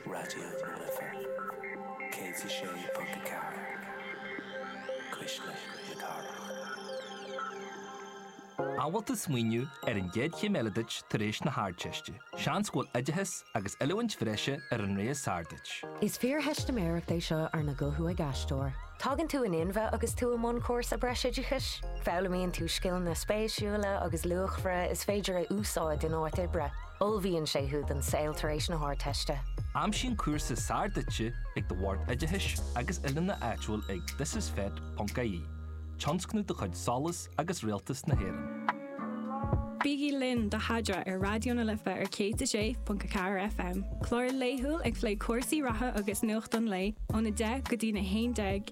Raidió na Life 106.4 Cuisle na Cathrach. An bhfuil tú ag smaoineamh ar an gcéad chéim eile duit tar éis na hArdteiste? Seans go bhfuil oideachas agus oiliúint bhreise ar an rogha is fearr duit. Is fíortheistiméireacht é seo arna guthú ag aisteoir. Tagann tú in inmhe agus tú i mbun cúrsa breisoideachais. Foghlaimíonn tú scileanna spéisiúla agus luachmhara is féidir a úsáid in áit oibre. Ullmhaíonn sé thú don saol tar éis na hArdteiste. Aimsigh an cúrsa is fearr duitse ag do Bhord Oideachais agus oiliúna áitiúil ag thisisfet.ie, tionscnamh de chuid Solas agus Rialtas na hÉireann. Bígí linn do Thaidhre ar Raidió na Life ar 106.4 FM, clár laethúil ag plé cúrsaí reatha agus nuacht an lae ón 10 go dtí na 11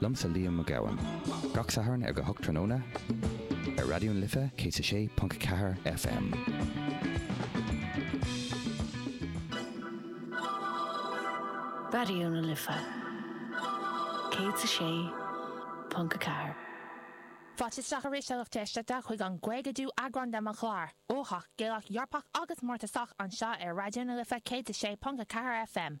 Liomsa Liam Mac Gabhann. Gach Satharn ag a hocht tráthnóna ar Raidió na Life 106.4 FM. Raidió na Life 106.4. Fáilte isteach arís a lucht éisteachta chuig an gcaogadú eagrán de mo chlár uathach Gaelach Eorpach agus mórtasach anseo ar Raidió na Life 106.4 FM.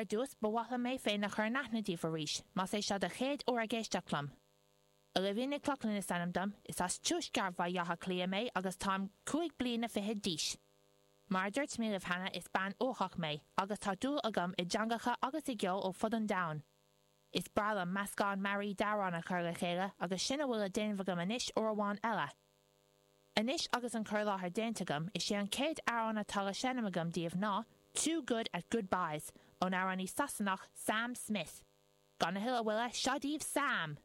Ar dtús, ba mhaith liom mé féin a chur in aithne daoibh arís, más é seo do chéad uair ag éisteacht liom. Olivia Nic Lochlainn is ainm dom, is as tuaisceart Bhaile Átha Cliath mé agus táim cúig bliana fichead d'aois. Mar a dúirt mé libh cheana, is bean uathach mé, agus tá dúil agam i dteangacha agus i gceol ó fud an domhain. Is breá liom meascán mearaí d'amhráin a chur le chéile, agus sin a bhfuil le déanamh agam anois uair amháin eile. Anois agus an cur i láthair déanta agam, is é an céad amhrán atá le seinm agam daoibh ná, Too Good at Goodbyes, ón amhránaí Sasanach, Sam Smith. Gan a thuilleadh moille, seo daoibh Sam!